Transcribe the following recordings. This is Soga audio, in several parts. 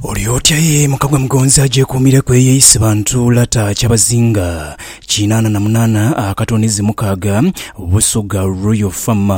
Oli otya ye muka gwa Mugonzi agyekuumireku eyo eisi bantu lata Kyabazinga kinaana na munaana akatone zi mukaaga Busugha Royal Farm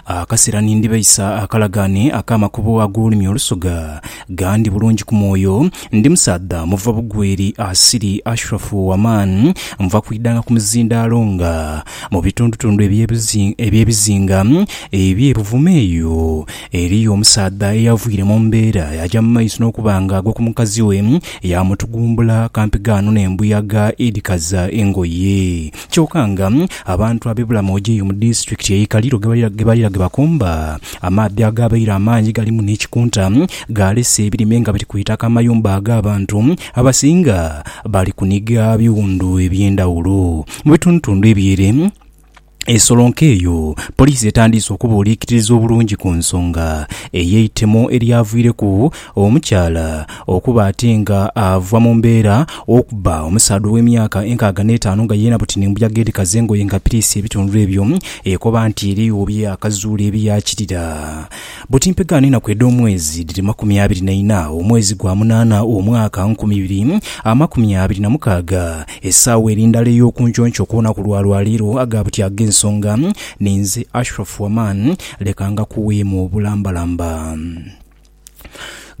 Akasera ni ndibeisa akalagaane ak'amakubo ag'olulimi olusugha Gandi bulungi ku mwoyo Ndi musaadha muva bugweri asiri Ashrafu wa man Nva kwidhanga ku muzindaalo nga mu bitundutundu eby'ebizinga eby'e Buvuma eyo Eriyo omusaadha eyavwire mu mbeera yaaja mu maiso n'okuba nga agwa ku mukazi we, yaamutugumbula kampigaano n'embuyaga edhikaza engoye. Kyoka nga abantu ab'e Bulamoja eyo mu disitulikiti ey'e Kaliro ghebalira ghe bakomba, amaadhi agaabaire amangi galimu n'ekikunta gaalese ebirime nga biri ku itaka amayumba ag'abantu abasinga bali kuniga biwundu eby'endhawulo mu bitundutundu eby'ere. Esolonke eyo, poliisi etandiise okubuuliikiririza obulungi ku nsonga ey'eitemo eryavwireku omukyala okuba ate nga ava mu mbeera okubba omusaadha ow'emyaka enkaaga n'etaanu nga yeena buti ni mbuyaga edhikaza engoye nga piriisi ebitundhu ebyo ekoba nti erigho bye yaakazuula ebiyaakirira buti mpegaano enaku edh'omwezi dhiri makumi abiri na ina omwezi gwa munaana omwaka nkumi ibiri amakumi abiri na mukaaga. Esaawa eri ndala ey'okunkyonkyoo ku lunaku lwa lwa leero aga buti ag'ensonga, ninze Ashraf Waman, leka ngakuweemu obulambalamba.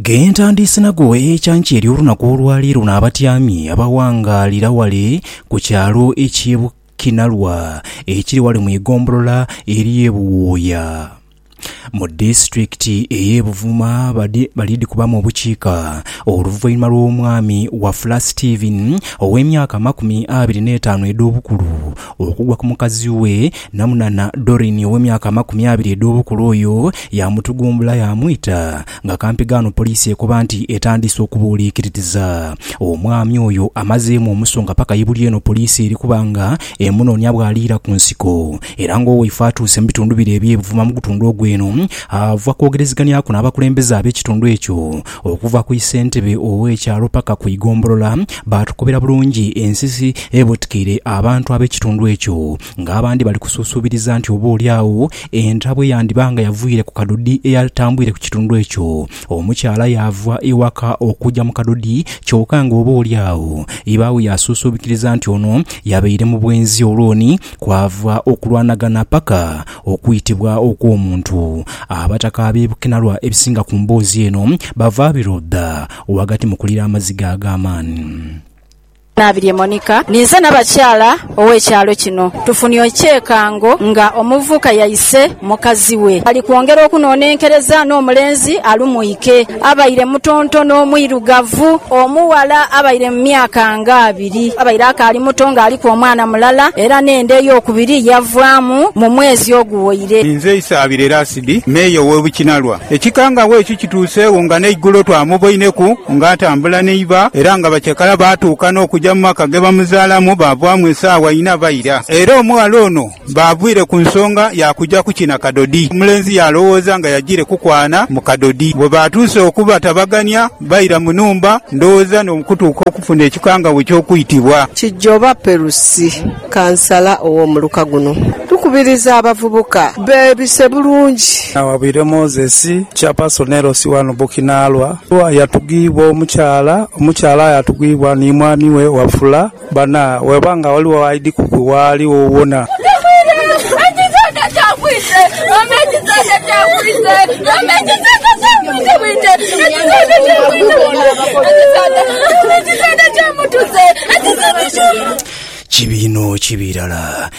Ge ntandiise nago ekyankya ery'olunaku olwa leero n'abatyami abawangaalira wale ku kyalo eky'e Bukinalwa ekiri wale mu igombolola ery'e Buwooya. Mu disitulikiti ey'e Buvuma balidhikubamu obukiika oluvainhuma lw'omwami Wafula Stephen ow'emyaka amakumi abiri n'etaanu edh'obukulu okugwa ku mukazi we Namunana Doreen ow'emyaka amakumi abiri edh'obukulu oyo yaamutugumbula yaamwita nga kampigaano poliisi ekoba nti etandise okubuuliikiririza omwami oyo amazeemu omusonga paka ibuli eno poliisi eri kuba nga emunoonya bw'aliira ku nsiko Era ng'owaife atuuse mu bitundu bire eby'ebuvuma mu gutundu ogwo eno, ava kwogereziganyaku n'abakulembeze ab'ekitundu ekyo. Okuva ku isentebe ow'ekyalo paka ku igombolola, baatukobera bulungi ensisi ebutikaire abantu ab'ekitundu ekyo. Ng'abandi bali kusuusuubiriza nti oba oli agho entabwe yandiba nga yavwire ku kadodi eyatambwire ku kitundu ekyo. Omukyala yaava ewaka okuja mu kadodi kyoka ng'oba oli agho iba we yasuusuubikiriza nti ono yabaire mu bwenzi olwoni Kwava okulwanagana paka okwitibwa okw'omuntu. Abataka ab'e Bukenalwa ebisinga ku mboozi eno bava biro dha ghagati mu kulira amaziga ag'amaani. Naabirye Monica. Ninze nabakyala ow'ekyalo kino. Tufunye ekyekango nga omuvubuka yaise Mukazi we ali kwongera okunonenkereza n'omulenzi alumwike. Abaire mutonto n'omwirugavu. Omughala abaire mu myaka nga abiri. Abaire akaali muto ng'aliku omwana mulala era n'enda ey'okubiri yavaamu mu mwezi oguwoire. Inze Isaabira Erasidi, Meeya ow'e Bukinalwa. Ekikangabwa ekyo kituuseegho nga n'eigulo twamuboineku ng'atambula n'eiba era nga bacakala baatuuka n'okuja mu maka ge bamuzaalamu baavaamu esaawa inha baira. Era omughala ono Baavwire ku nsonga ya kuja kukina kadodi. Omulenzi yaalowooza nga yajiire kukwana mu kadodi. Bwe baatuuse okubatabagania, baira mu nhumba, ndowooza n'okutuuka okufuna ekikangabwa eky'okwitibwa. Kijoba Perusi, kansala ow'omuluka guno, tukubiriza abavubuka beebise bulungi. Naawabwire Moses, chairperson LC wano Bukinaalwa, yatugibwa omukyala, omukyala yatugibwa ni mwami we Wafula. Bana, bw'eba nga ghaligho aidhi kukuwaali wowona. Kibi inho, kibi irala.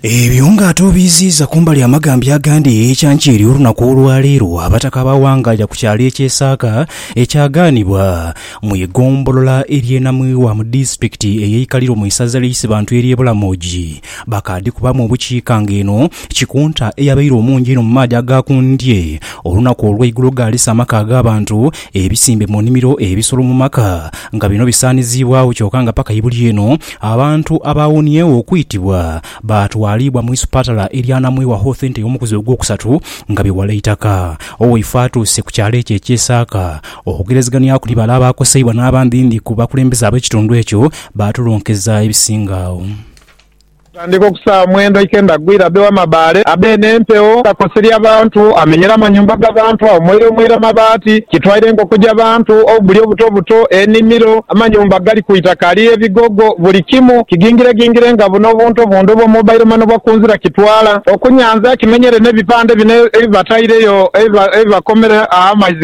Ebyo nga ate obiiziiza kumbali amagambya agandi ekyankya eri olunaku olwaleero, Abataka ba Wangaja ku kyalo eky'e Saaka ekyagaanibwa. Mu igombolola ery'e Namwiwa mu disitulikiti eye Ikaliro mu isaza lya Isibantu ery'e Bulamogi, bakaadhikubamu obukiika nga eno Kikunta eyabaire omungi einho mu maadhi aga ku ndye olunaku olweigulo ghaalisa amaka ag'abantu, ebisimbe mu nimiro, ebisolo mu maka nga bino bisaaniziibwagho kyoka nga paka ibuli eno abantu abaawoniegho okwitibwa baatwaliibwa mu isupatala erya Namwiwa Hoth Ente y'omukuzi ogwokusatu nga biwala eitaka. Owaifo atuuse ku kyalo ekyo ekye Saaka. Okwogerezegania kuli bale abaakoseibwa n'abandi ni ku bakulembeze ab'ekitundu ekyo baatulunkeza ebisinga agho. Okutandika ku saawa mwenda eikendha gwira, abe w'amabaale abe n'empewo akakoseria abantu, amenyera amanyumba ga bantu, awomoira omoira mabaati, kitwaire enkoko ja bantu, obubuli obuto buto, enimiro, amanyumba agali ku itaka ali ebigogo, buli kimu kigingiregingire nga buno obuntu obundi obwa mobile money obwa kunzira kitwala. Okunyanza kimenyere n'ebipande bino ebibataireyo ebibakomera amaizi.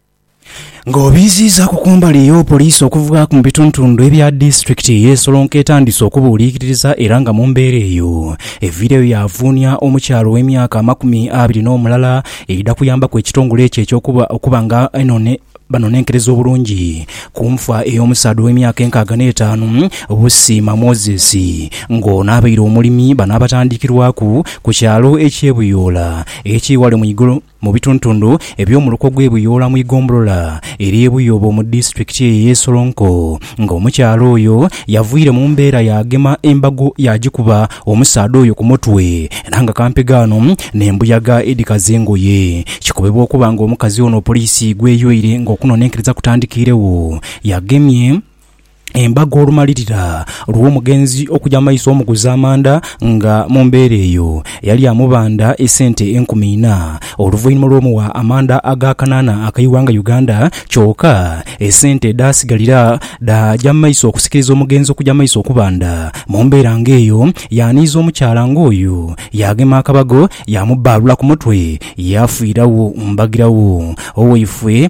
Nga obiiziizaaku ku mbali eyo, poliisi okuvaaku mu bitundutundu ebya disitulikiti eye Solonko etandiise okubuuliikiriza era nga mu mbeera eyo, eviireyo yaavuunia omukyala ow'emyaka amakumi abiri n'omulala eidha kuyambaku ekitongole ekyo ekyo okuba nga banonenkereza obulungi ku nfa ey'omusaadha ow'emyaka enkaaga n'etaanu Busiima Moses nga ono abaire omulimi. Bano abatandikirwaku ku kyalo ekye Buyoola ekiri ghale mu Mu bituntundu eby'omu luko gw'e Buyoola mu igombolola ery'e Buyoobo mu disitulikiti eyo ey'e Solonko nga omukyala oyo yavwire mu mbeera yaagema embago yaagikuba omusaadha oyo ku mutwe era nga kampegaano n'embuyaga edhikaza engoye. Kikobebwa okuba nga omukazi ono poliisi gw'eyoire ng'okunonenkereza kutandikiiregho yagemye embaga olumalirira lw'omugenzi okuja maiso omuguza amanda nga mu mbeera eyo yali amubanda esente enkumi ina oluvainhuma lw'omuwa amanda aga kanana akaighanga Uganda kyoka esente edhasigalira dhaaja mu maiso okusikiriza omugenzi okuja maiso okubanda. Mu mbeera nga eyo yaaniiza omukyala nga oyo yaagema akabago yaamubbaalula ku mutwe yaafiiragho mbagiragho. Owaifwe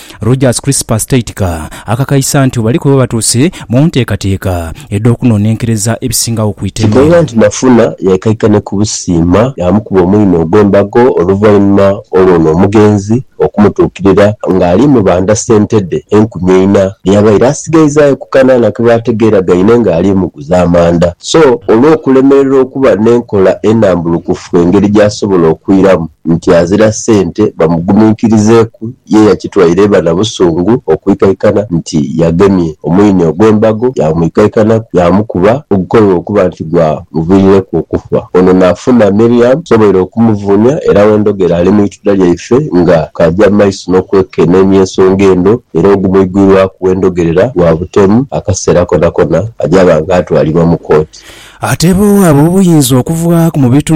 Rojas Crispas Teitka akakaisa nti bali kuba batuuse mu nteekateeka edh'okunonenkereza ebisingagho ku iteme. Kighoza nti Nafuna yaikaikane ku busiima yaamukuba omwinho ogw'embago oluvainhuma olw'ono omugenzi okumutuukirira ng'ali mu banda sente dhe enkumi eina dhe yabaire asigaizaayo ku kanaana ke baategeeragaine ng'ali muguza amanda. So olw'okulemererwa okuba n'enkola enambulukufu engeri gy'asobola okwiramu, nti azira sente bamuguminkirizeeku ye yakitwaire iba na busungu okwikaikana nti yagemye omwine ogw'embago yaamwikaikanaku yaamukuba ogukolewa okuba nti gwa muviirireku okufa. Ono naafuna Miriam asoboire okumuvuunia era wendhogera ali mu itula lyaife nga kaaja mu maiso n'okwekeneenia ensonga eno era ogumwigwirwaku wendhogerera gwa butemu akaseera konakona aja banga atwalibwa mu kooti. Ateebwa owaaba obuyinza okuva mu bitundu.